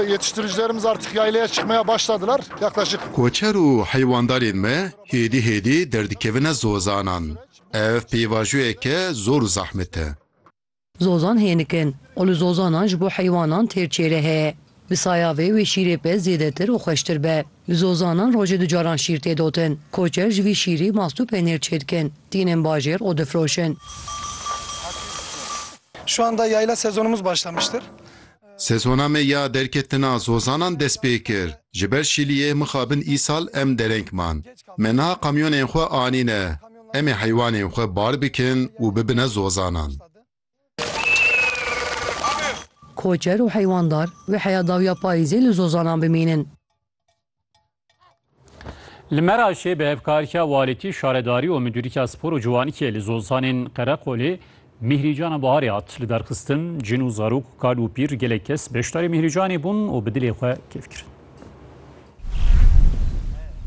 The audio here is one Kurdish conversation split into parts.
Yetiştiricilerimiz artık yaylaya çıkmaya başladılar. Yaklaşık. Koçer û heywandarên me hêdî hêdî derdikevine zozanan. Ev pêvajoyeke zor û zahmet e. Zozan hênik in û li zozanan ji bo heywanan têr çêre heye. Bi saya vê wê şîrê pez zêdetir û xweştir be. Li zozanan rojê du caran şîr tê dotin. Koçer ji vî şîrî mast û penêr çêdikin, tînin bajêr û difiroşin. Şu anda yayla sezonumuz başlamıştır. Sezona me ya derketina zozanan dest pê kir. Ji ber şîliyê mixabin îsal em dereng man. Me niha kamyonên xwe anîne. Em ê heywanên xwe bar bikin û bibine zozanan. Koçer û heywandar vê heya dawiya payîzê li zozanan bimînin. Li Meraşê bi hevkariya walîtî, şaredarî û midûrîya spor û ciwanîkê li Zozanên Qereqolê Mîhrîcana Biharê hat lidarxistin. Cin û zarok, kal û pîr gelek kes beşdarî Mîhrîcanê bûn û bi dilê xwe kêf kirin.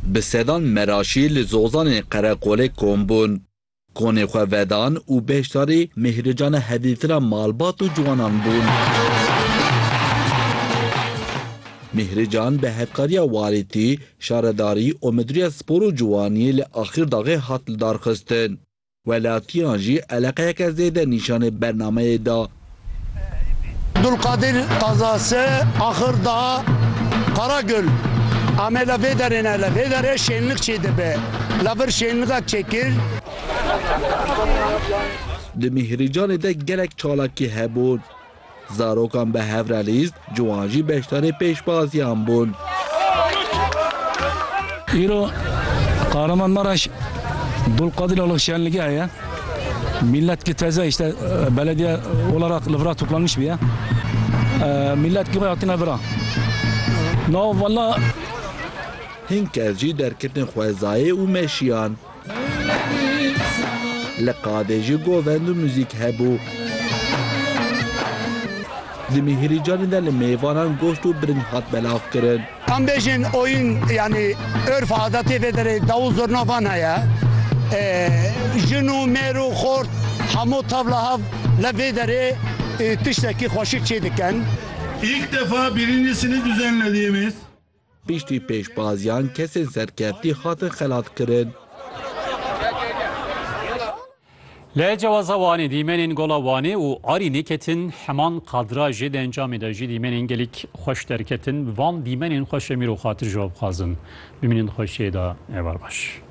Bi sedan Meraşî li Zozanên Qereqolê kom bûn. Konê xwe vedan û beşdarî mêhricana hevdîtira malbat û ciwanan bûn. Mêhrican bi hevkariya Walîtî, Şaredarî û Midûriya Spor û Ciwaniyê li Axîrdaxê hat lidarxistin. Welatiyan jî eleqeyeke zêde nîşanê bernameyê da. Dulkadîr Tazase, axir da Karagul. Ame la vê derê ne, la vê derê şênlik çê dibe. La vir şênliga çêkir. Di Mîhrîcanê de gelek çalakî hebûn. Zarokan bi hev re lîst, Ciwan jî beşdarê pêşbaziyan bûn. Îro Kahraman Maraş Dulqadir Alıx şenligi heye. Millet ki teze işte belediye olarak li vira toplanmış biye. Millet ki xwe hatine vira. Nav valla Hin kes jî derketin xwezayê û meşiyan. Li qadê jî govend û muzîk hebû. Di Mihirîcanê de li mêvanan goşt û biring hat belavkirin. Em bêjin oyun yanî urf û adetê vê derê dawû zurna van heye. Jin û mêr û xort hemû tev li hev li vê derê tiştekî xweşik çêdikin. İlk defa birincisini düzenlediğimiz. Piştî pêşbaziyan kesên serkeftî hatin xelatkirin. Li Cewaza Wanê dîmenên Gola Wanê û Arî neketin, heman kadrajê di encamê de jî dîmenên gelîk xweş derketin. Bi van dîmenên xweş em îro xatir ji we bixwazin bimînin di xweşiyê de. Êvar baş.